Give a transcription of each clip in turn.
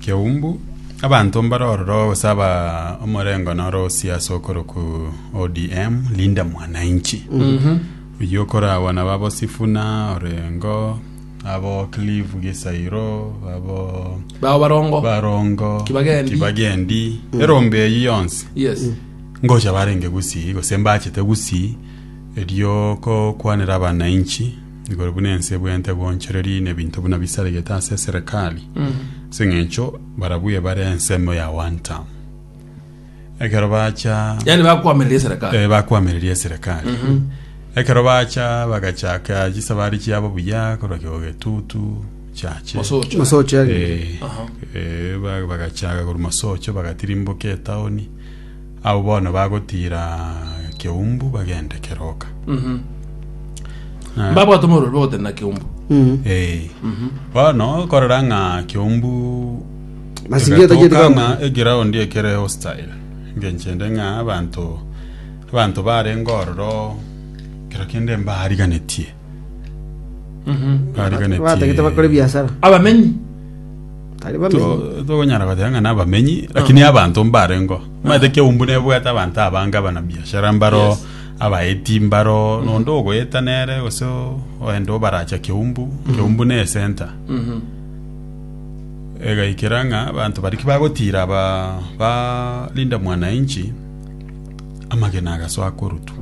Keumbu, abanto mbare ororo gose aba omorengo noro osie ase okoroku ODM, Linda Mwananchi. Oyio okoragwa nabo abo Sifuna, Orengo, abo Clive Gisairo, abo bao barongo Barongo, Kibagendi. Kibagendi, erombe eyio yonsi. yes ngocha barenge gusii gose mbachete gusii erio kokwanera abanainchi igoro buna ense ebwenerete goonchoreria nebinto buna bisaregete ase eserekari, ase eng'encho barabwo ebare ensemo ya one term. Ekero bacha yaani bakwamerera eserekari eh, bakwamereria eserekari ekero bacha bagachaka chisabari chiabo buya korwa kigo getutu chache Mosocho. Mosoche agende. Eh, eh, ba- bagachaka korwa masocho bagatirimboka etaoni Abwo bono bagotiira Keumbu bagende keroka. Na- Mbabwate omorweri bagotenda keumbu. Eh. Bono korora ng'a Keumbu Mazingira tachiri egatoka bamba. ng'a eground ekere hostile ngenchende ng'a abanto abanto barenge ororo kero kende mbariganetie Barigane chi- batagete bakore biasara abamenyi tari bamenyi To- togonyara goteba ng'a nabamenyi lakini abanto mbarengo omanyete keumbu nebwate abanto abange abana biashara mbaro Yes. abaeti mbaro nondo ogoeta nere gose o- oende obaracha keumbu keumbu ne esenta egaikera ng'a abanto baria ki bagotira ba ba Linda Mwananchi amagena agasoa korutwa,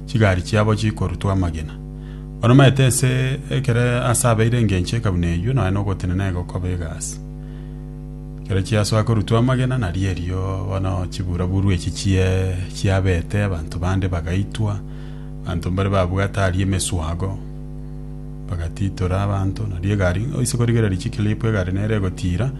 chigari chiabo chikorutwa amagena. Banomaete ense ekero aase abeire engencho ekabuna eyio, nonya nogotenena egokoba egasi. Ekero chiasoa korutwa amagena nari erio bono chibura-buru echi chie chiabete, abanto bande bagaitwa, abanto mbare babwate aria emeswago, bagatitora abanto, nari egari oise korigereria chikilipu egari nere egotira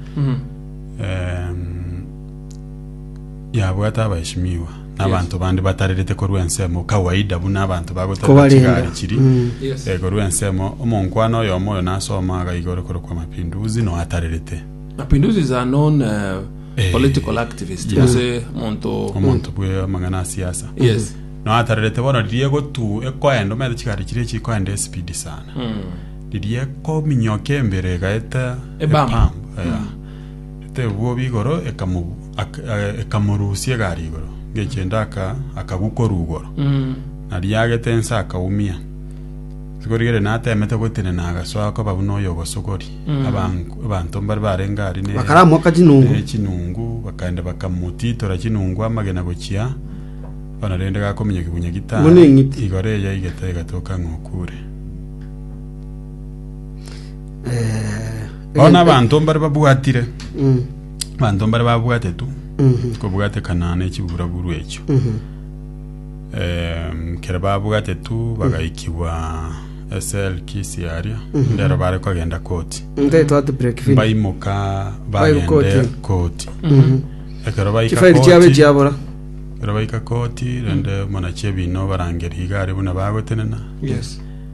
Yabwate abaishimiwa na abanto bande batarerete korwa ensemo kawaida buna abanto bagoterera Kobarenda. chigari chiri Mm. Yes. eh, korwa ensemo omonkwana oyomo oyo nasoma aga igoro korokwa mapinduzi noatarerete Mapinduzi is a known uh, Eh. political activist. Yeah. Ase monto. omonto bwe amang'ana a siasa Yes. noatarerete bono riria egotu ekoenda omanyete chigari chiri chikoenda espidi sana Mm. riria ekominyoka embere egaeta Ebam. epam, yeah. Etebwobi igoro ekamorusia egari igoro ngechende akagwa korugoro nariagete ense akaumia igorigere natemete gotenena agasoa akoba buna oyogosogori abanto mbare barenge ari bakaramoka chinungu echinungu bakagenda bakamotitora chinungu amagena gochia bono rende gakominyoka kibunya gitano Buna eng'iti. igoro eyaigete egatoka ng'a okure Bao nabanto mbare babwatire abanto mbare babwatetwe kobwatekana ne chiburaburu echio Em, kere babwatetwe bagaikigwa eselki siaria ndero bare kogenda koti nte twati break finish baimoka Baire bagende koti. koti ekero baika chifaili chiabe koti chiabora ekero baika koti rende monachie bino barangeria igare buna bagotenena yes